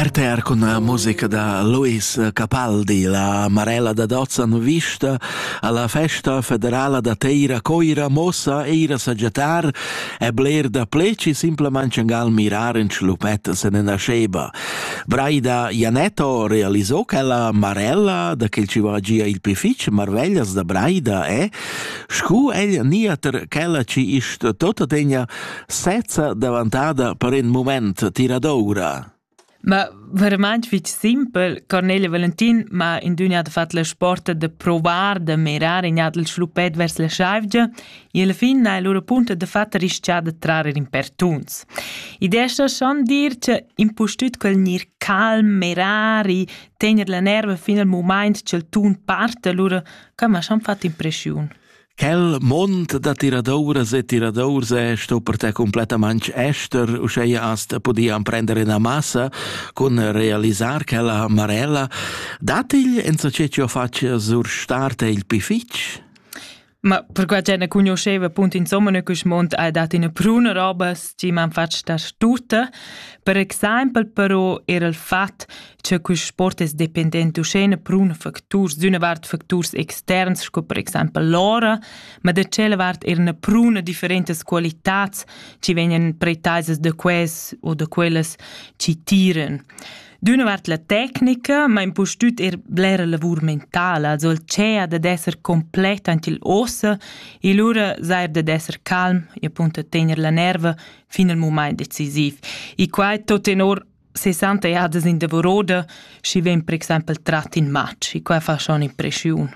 RTR con la musica da Luis Capaldi, la Marella da Dozzan vista alla festa federala da Teira Coira mossa eira saggiatar e bler da pleci simplemente gal mirar in schlupet se ne nasceba. Braida Janetto realizò che la Marella da che ci va gia il pific marveglias da Braida è scu ella niater chella ci ist tota tegna sezza davantada per in moment tiradoura. Ma verament fitg simpel, Cornelia Valentin m'ha in dünia de fat la sporta de provar de mirar in jadl schluppet vers la schaivgia e alla fin ha lura punta de fat rischia de trarer in pertuns. Idea sta schon dir che impustüt quel nir calm, mirar e tener la nerva fin al moment che il tun parta lura, ca m'ha schon fat impressiun. Quel mond da tiradouras e tiradours è sto per te completamente ester, uscheia hast podia emprender ina massa cun realisar quella marella. Datigl en so ce ci ho fatg sur starte il pi fitg? Ma perquai che ne conosceva appunto insomma ne quest mond ha dat ina pruna robas ci m'han fatg da stutta. Per exempel però era il fatg che quist sport es dependent uschena prun facturs d'üna vart facturs externs sco per exaimpel l'ora, ma da tschella vart eir üna pruna differentas qualitats chi vegnan pretaisas da quels o da quellas chi tiran. D'üna vart la tecnica, ma impustüt eir blera lavur mentala, also il tschea dad esser complet ant il ossa e lura sair dad esser calm e appunto tener la nerva fin al mumaint decisiv. E quai tot tenor 60 jadas in davoroda, schi vegn per exempel trat in match, e quai fa schon impressiun.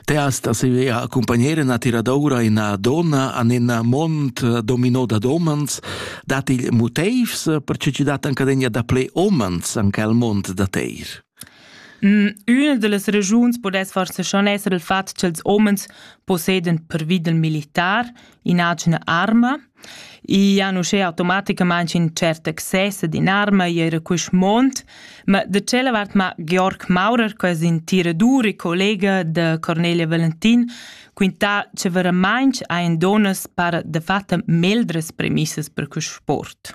Teas da sevea accompagnere na tiradoura ina donna an ina mont domino da domans, dat il moteivs per che ci dat ancadegna da ple omans an quel mont da teir? Mm, Üna de las regiuns podess forse schon esser il fatg ch'els omens posseden per vida militar inagina arma, I han uschè automaticamaing ün tschert access ad in'arma i eira quist mond, ma da tschella vart m'ha Georg Maurer, que es ün tiradur e collega da Cornelia Valentin, quintà cha veramaing hajan dunnas para dafatta meglras premissas per quist sport.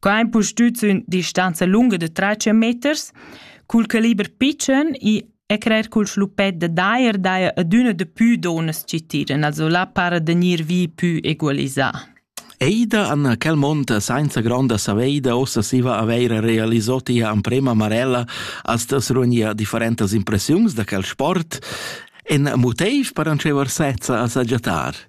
Co ein pustüt sün distanza lunga de 3 meters, cul caliber pitschen e e crer cul schlupet de daer daia ad üna de pü donas ci tiran, also la para de gnir vi pü egualisà. Eida Anna Calmonta sainza gronda saveida ossa siva aveira realisò tia amprema marella as das runia differentas impressiuns da quel sport en motiv per anceva sezza a sagiatar.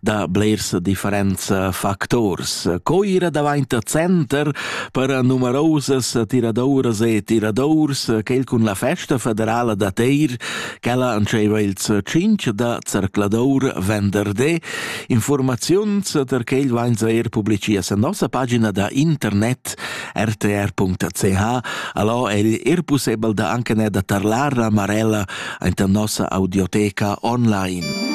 da blers differents factors. Co ira davant center per numerosas tiradoras e tiradors quel cun la festa federala da Teir, quella antscheva ils cinc da zercladour venderdé. Informaziuns per quel vain er publicias a nossa pagina da internet rtr.ch. Allò è er possibel da anche ne da tarlar a Marella anta nossa audioteca online.